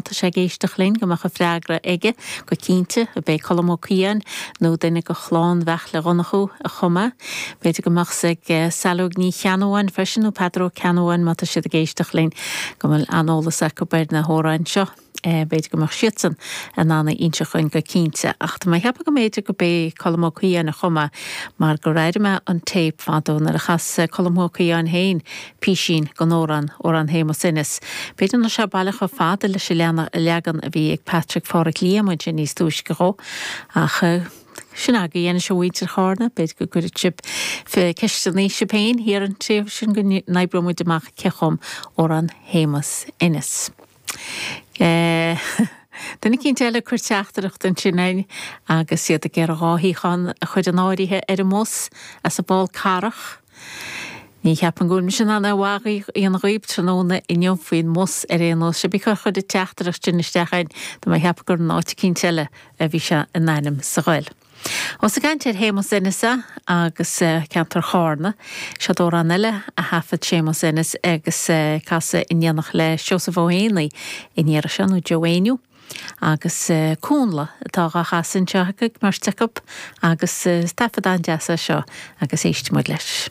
Tá sé ag éisteacht linn go mbeadh an freagra aige go cinnte, b'é Colm Ó Caoidheáin, nó duine de chlann Bheairtle Dhonncha, a chum é. B'fhéidir go mbeadh 's ag Saileog Ní Cheannabháin freisin, nó Peadar Ó Ceannabháin, má tá siad ag éisteacht linn, go bhfuil an-eolas acu ar na hamhráin seo. B'fhéidir go mbeadh siadsan in ann a inseacht dúinn go cinnte. Ach tá mé ag ceapadh go mb'fhéidir go b'é Colm Ó Caoidheáin a chum é, mar gur airigh mé an téip fadó nuair a chas Colm Ó Caoidheáin féin Písín den amhrán, Amhrán Shéamuis Ennis. B'fhéidir nach raibh sé baileach chomh fada leis an leagan a bhí ag Patrick Pháraic Liam ansin níos túisce dhó, ach sin agaibh é anois a mhuintir Chárna, b'fhéidir go gcuirfidh sibh ceisteanna sibh féin thiar an taobh sin go n-oibreoimid amach cé a chum Amhrán Shéamuis Ennis. Duine eicínt eile ag cur teachtaireacht ansin againn agus iad ag iarraidh dhá shuíochán a chur in áirithe ar an mbus as an bPoll Carrach. Ní cheapaim go bhfuil mise in ann aon mhaith a dhéanamh dhóibh tráthnóna inniu faoin mbus ar aon nós. Cébí cé a chuir an teachtaireacht sin isteach againn, tá mé ag ceapadh gur in áit eicínt eile a bhí sé in ainm is a ghoil. Ós ag caint ar Shéamus Ennis agus ceantar Chárna, siod amhrán eile a thaifead Séamus Ennis agus é ag casadh in éineacht le Seosamh Ó hÉanaí an iarraidh seo, nó Joe Éinniú agus Cúnnla atá dhá chasadh anseo ag an mbeirt acu, agus is taifead an-deas é seo agus éistfimid leis.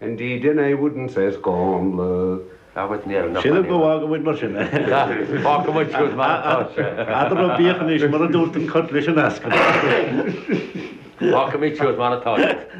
Indeed and I wouldn't say scannal. Sílim go bhfágfaidh muid mar sin. Fágfaidh muid sibh mar atá sibh. Ara bíodh anois mar a dúirt an cat leis an eascann. Fágfaidh muid sibh mar atá sibh.